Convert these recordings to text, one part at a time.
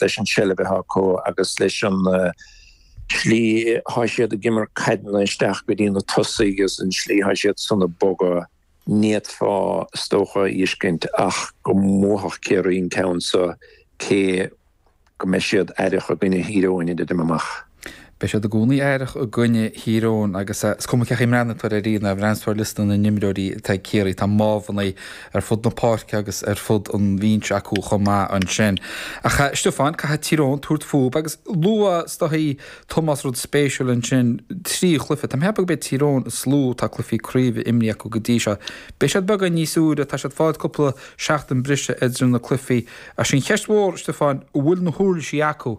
leis an tseilbh atá acu agus leis an slí atá siad ag imirt caideanna isteach go dtí na tosaigh agus an slí atá siad san ag bogadh, n'fhéadfá is dócha a fheiscint ach go mbuafadh Ciarraí an ceann seo cé go mbeidh siad aireach i gcoinne Thír Eoghain idir am amach. Beidh siad i gcónaí aireach i gcoinne Thír Eoghain agus is cuma cé chaoi a mbreathnaíonn tú air, nuair a bhreathnaíonn tú ar liosta na n-imreoirí atá ag Ciarraí, tá mámhannaí ar fud na páirce agus ar fud an bhinse acu chomh maith ansin. Ach, a Stiofáin, caithfidh Tír Eoghain tabhairt fúthu agus luaigh is dóichí Tomás rud spéisiúil ansin, trí chluiche. Táim ag ceapadh go mbeidh Tír Eoghain is lú atá cluichí craoibhe imrithe acu go dtí seo. Beidh siad beagán níos úire, tá siad ag fáil cúpla seachtain breise idir na cluichí. Ach sí an cheist mhór, a Stiofáin, an bhfuil na huirlisí acu?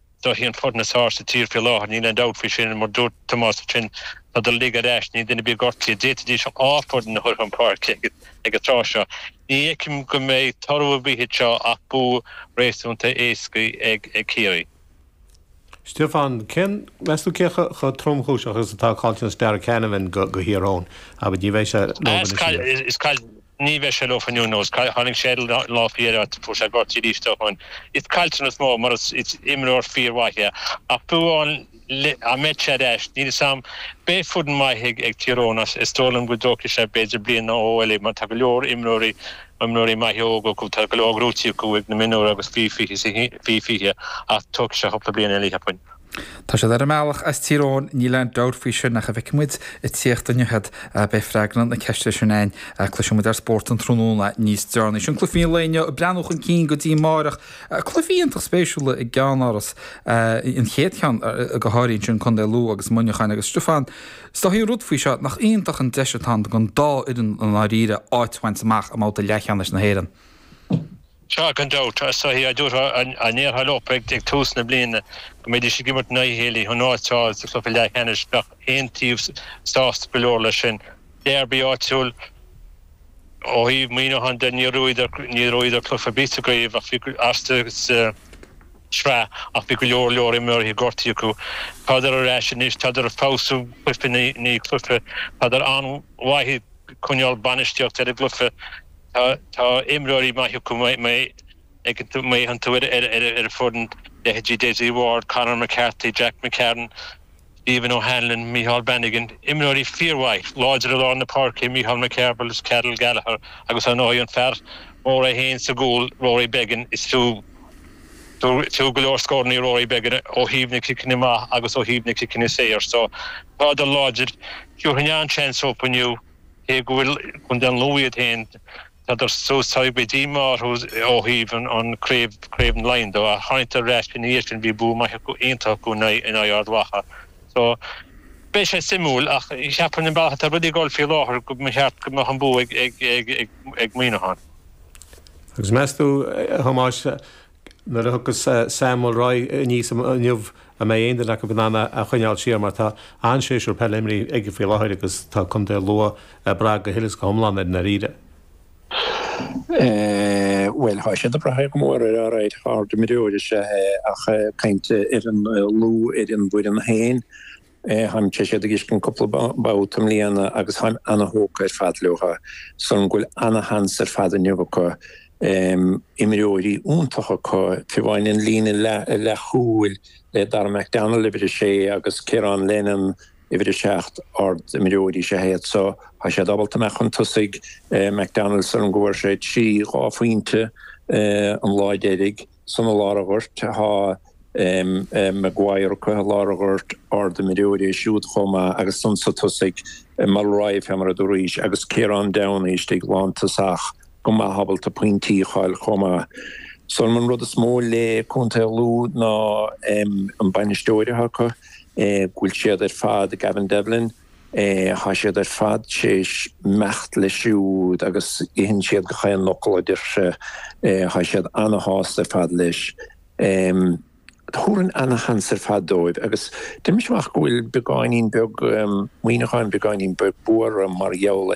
Is dóichí an foireann is fearr sa tír faoi láthair, níl aon dabht faoi sin, mar dúirt Tomás ansin tádar uilig ar ais, níl duine ar bith gortaithe, d'fhéadfaidís dhá foireann a chur chun páirce ag an tráth seo. Ní fheicim go mbeidh toradh ar bith air seo ach bua réasúnta éasca ag Ciarraí. Stiofán, cén, meas tú cé chomh tromchúiseach agus atá caillteanas Darragh Canavan do Thír Eoghain? Á bhuel, ní bheidh sé leob anois, a Mhic. Is caillteanas. Ní bheidh sé leofa inniu, nós. Tháinig sé an lá faoi dheireadh agus fuair sé gortú arís dó sin. Is caillteanas mór mar is imreoir fíormhaith é. Ach fiú amháin dá mbeadh sé ar ais, níl 'fhios a'm. Beidh foireann maith ag Tír Eoghain ach is dóigh liom go dtógfaidh sé b'fhéidir bliain nó dhó eile mar tá go leor imreoirí, imreoirí maithe óga acu, tá go leor gnóite acu ag na mionúir agus faoi 20 ach tógfaidh sé cúpla bliain eile, cheapfainn. Tá siad ar a mbealach as Tír Eoghain, níl aon dabht faoi sin, ach an bhfeicfidh muid ag tíocht inniu iad. Beidh freagra na ceiste sin againn, cloisfidh muid ar Spórt an Tráthnóna níos deireanaí. Sin cluichí an lae inniu ag breathnú chun cinn go dtí amárach. Cluichí iontach spéisiúla i gCeannáras an chéad cheann go háirithe ansin Contae Lú agus Muineachán agus Stiofán, is dóichí an rud faoi seo, nach iontach an deis atá ann don dá fhoireann i ndáiríre áit a bhaint amach i mbabhta leathcheannais na hÉireann. Sea gan dabht is dóichí dá dtabharfá dá ndéarfá leo ag tús na bliana go mbeidís ag imirt in aghaidh a chéile chun áit a fháil sa chluiche leathcheannais. Bheadh chaon taobh sásta go leor leis sin. Dearbaí áitiúil ó thaobh Mhuineacháin de níor bhuadar cluiche ar bith sa gcraobh ach bhí astu sa tsraith ach bhí go leor leor imreoirí gortaithe acu. Tádar ar ais anois, tádar ag feabhsú cluiche i ndiaidh cluiche, tádar an-mhaith ag coinneáil bainistíocht ar an gcluiche. Tá tá imreoirí maith acu má má fhéachann tú ar ar ar an foireann leithéidí Dessie Ward, Conor McCarthy, Jack McCarron, Stephen O'Hanlon, Micheál Bannigan, imreoirí fíormhaith, láidre i lár na páirce, Micheál McCarville, Karl Gallagher agus ar ndóigh an fear mór é féin sa gcúl, Rory Beggan, is fiú fiú fiú go leor scórannaí Rory Beggan ó thaobh na ciceanna amach agus ó thaobh na ciceanna saor so tádar láidir, tabharfainn an-seans dóibh inniu. Cé go bhfuil Contae an Lú iad féin, tá dul suas teagmhála díomá orthu ó thaobh an Craobh na Laighean de, ach tháinig siad ar ais ina dhiaidh sin, bhí bua maith acu, iontach acu in aghaidh Ard Mhacha. So, beidh sé suimiúil ach cheapfainn an bealach atá rudaí ag dul faoi láthair go mba cheart go mbeadh an bua ag Muineachán. Agus meas tú, a Thomáis, Nuair a thiocfas Sam Mulroy aníos inniu an mbeidh aon duine acu in ann é a choinneáil siar mar tá an-séasúr peile imeartha aige faoi láthair agus tá contae Lú ag brath go huile is go hiomlán air i ndáiríre. Bhuel, tá siad ag brath go mór air, alright, ardimreoir is ea é ach caint ar an Lú, ar an bhfoireann féin, Táim tar éis iad a fheiscint cúpla babhta i mbliana agus táim ana-thógtha ar fad leo. Is dóigh liom go bhfuil ana-sheans ar fad inniu acu. Imreoirí iontacha acu, taobh amháin an líne leathchúil le Darragh McDonnell, uimhir a sé, agus Ciaran Lennon, uimhir a seacht, ard-imreoirí is ea iad so tá siad ábalta imeacht chun tosaigh. McDonnell is dóigh liom go bhfuair sé trí, dhá phointe an lá deiridh. Ansan i lár an ghoirt tá Maguire acu i lár an ghoirt, ard-imreoir é siúd chomh maith agus ansan sa tosaigh, Mulroy, fé mar a dúraís, agus Ciarán Downey istigh lántosach go maith ábalta pointí a fháil chomh maith. So an rud is mó le contae Lú ná an bainisteoir atá acu, go bhfuil siad ar fad, Gavin Devlin, Tá siad ar fad tréis imeacht leis siúd agus itheann siad gach aon fhocal a deir sé. Tá siad ana-shásta ar fad leis. Tabharfainn ana-sheans ar fad dóibh agus deinimse amach go bhfuil beagáinín beag, Muineachán beagáinín beag buartha mar gheall